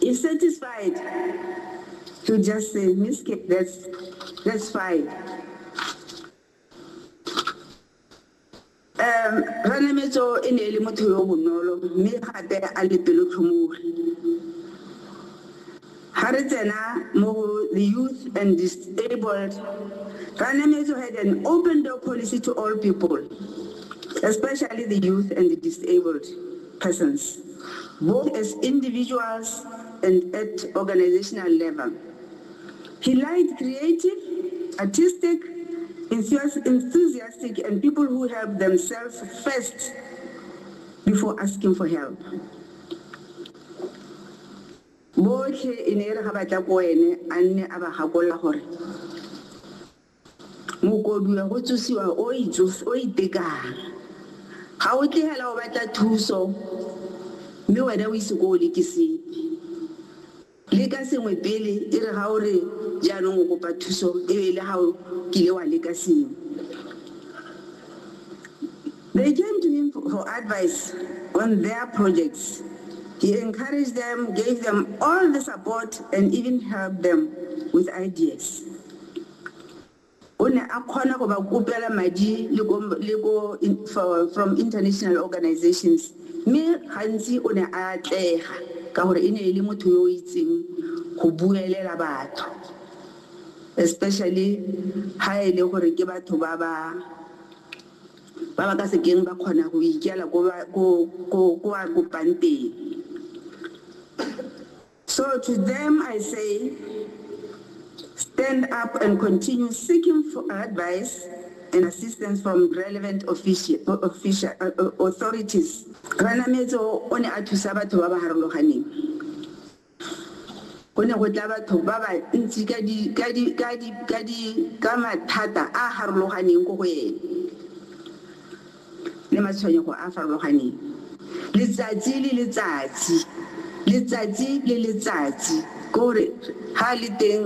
If satisfied to just say Miskit, that's fine. Ranemetso e ne e le motho yo o bonolo mme gape a le pelotlhomogi. Ga re tsena mo go the youth and disabled, Ranemetso had an open door policy to all people, especially the youth and the disabled. persons, both as individuals and at organizational level. He liked creative, artistic, enthusiastic, and people who help themselves first before asking for help. Botlhe e ne e re ga ba tla ko ene a nne a ba gakolola gore. Mokoduwa go tsosiwa o itekang. Ga o tle hela o batla thuso mme wena o ise ko o leke sepe. Leka sengwe pele e re ga o re jaanong o kopa thuso e be e le ga o kile wa leka sengwe. They came to him for advice on their projects. He encouraged them, gave them all the support and even helped them with ideas. o ne a kgona go ba kopela madi le ko le ko from international organizations mme gantsi o ne a atlega ka gore e ne e le motho yo o itseng go buelela batho especially ha e le gore ke batho ba ba ba ba ka sekeng ba kgona go ikela ko ko ko a kopang teng So to them I say, stand up and continue seeking for advice and assistance from relevant official, official, uh, uh authorities. Ranametso o ne a thusa batho ba ba harologaneng. Go ne go tla batho ba ba ntsi ka di ka di ka di ka di ka mathata a harologaneng go go ene. le matshwenyego a a farologaneng letsatsi le letsatsi, letsatsi le letsatsi, ke gore ga a le teng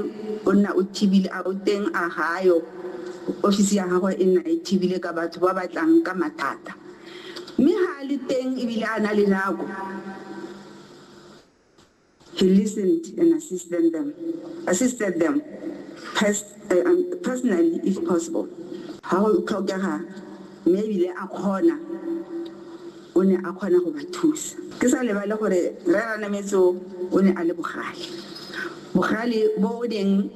o nna o thibile, a o teng a ga a yo, ofisi ya gagwe e nna e thibile ka batho ba ba tlang ka mathata. Mme ga a le teng ebile a na le nako. He listened and assisted them, assisted them pers uh, um, personally if possible. Ha go tlhokega mme ebile a kgona o ne a kgona go ba thusa. Ke sa lebale gore re ranametso o ne a le bogale. Bogale bo o neng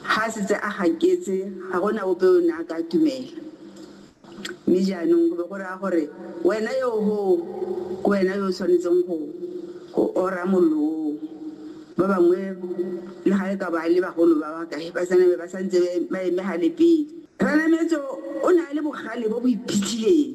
ha setse a gaketse ga gona ope o ne a ka tumela. Mme jaanong go be go raya gore wena yo o hoo ke wena yo o tshwanetseng go, go ora mollo oo. Ba bangwe, le ga e ka ba e le bagolo ba ba kae, ba sa name ba sa ntse ba e, ba eme gale pele. Ranametso o ne a le bogale bo bo iphitlhileng.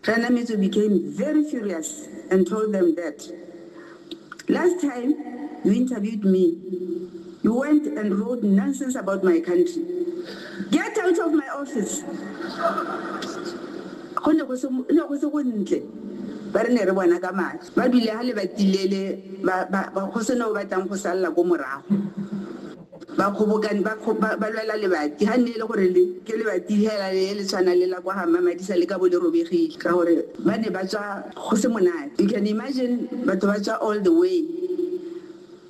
Kgainamitso became very furious and told them that, Last time you interviewed me, you went and wrote nonsense about my country. Get out of my office! Go ne go se go ntle, ba re ne re bona ka matlho. Ba dule hale ba tilele, go se na o batlang go salela ko morago. Bakgobokanyi ba ba ba lwela lebati, ga nne e le gore le ke lebati fela le le tshwanang le la kwa ga Mmamadisa le ka bo le robegile ka gore ba ne ba tswa go se monate. You can imagine batho ba tswa all the way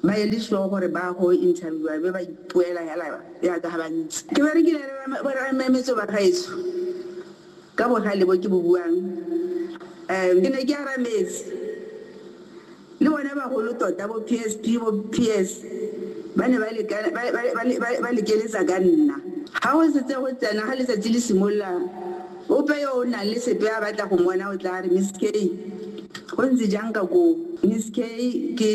ba e le sure gore ba go interviewer be ba ipoela fela yaka ga ba ntse. Ke berekile le bo rra Mmametso ba gaetsho. Ka bohale bo ke bo buang, ke ne ke arametse. Le bona bagolo tota, bo PSP, bo PS, ba ne ba leka, ba, ba, ba, ba, ba lekeletsa ka nna. Ga go setse go tsena, ga letsatsi le simolola, ope yo o nang le sepe a batla go mmona o tlaa re, Miss Kay, go ntse jang ka koo? Miss Kay, ke,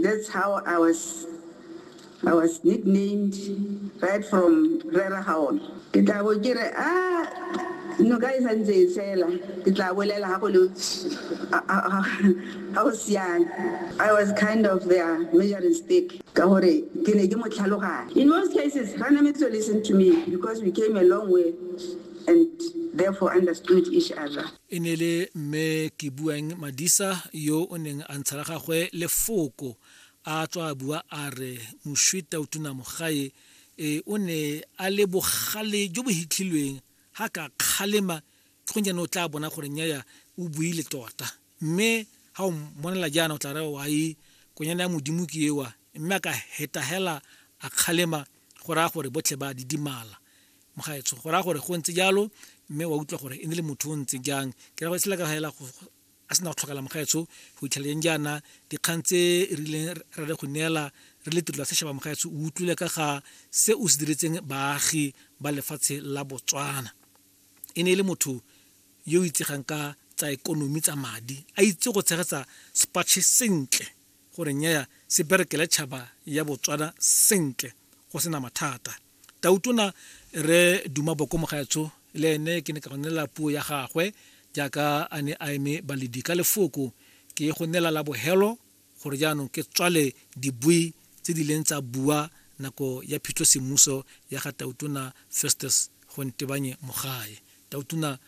that's how I was. I was nicknamed right from Rera Haon. Ke tla bo ke re a noka e sa ntse e tshela, ke tla bolela ha go le ha go siame. I was kind of their measuring stick ka gore ke ne ke mo tlhaloganya. In most cases, Ranametse listened to me because we came a long way and therefore understood each other. E ne e le Mme Kebuang Madisa yo o neng a ntsha la gagwe lefoko a tswa a bua a re moswi tautuna mogae e o ne a le bogale jo bo hitlhilweng ga ka kgalema ke go jaanong o tla bona gore nyaya o buile tota mme ga o mmonela jaana o tla re wa e konyane ya modimo ke ewa mme a ka hetahela a kgalema go raya gore botlhe ba didimala mogaetsho go raya gore go ntse jalo mme wa utlwa gore e ne le motho o ntse jang ke ra go e sela ka fela a sena go tlhokala mogaetsho go itlheleng jaana dikgang tse e rileng ra le go neela re le tirelo ya sešaba mogaetsho o utlwile ka ga se o se diretseng baagi ba lefatshe la botswana e ne e le motho yo o itsegang ka tsa ekonomi tsa madi a itse go tshegetsa sepatšhe sentle gore nyaya se berekele tšhaba ya botswana sentle go sena mathata Tautona Rre Duma Boko Mogaetsho le ene ke ne ka go neela puo ya gagwe jaaka a ne a eme baledi ka lefoko. Ke ye go neela la bohelo gore jaanong ke tswale dibui tse di leng tsa bua nako ya phitlho semmuso ya ga Tautona Festus Gontebanye Mogae. Tautona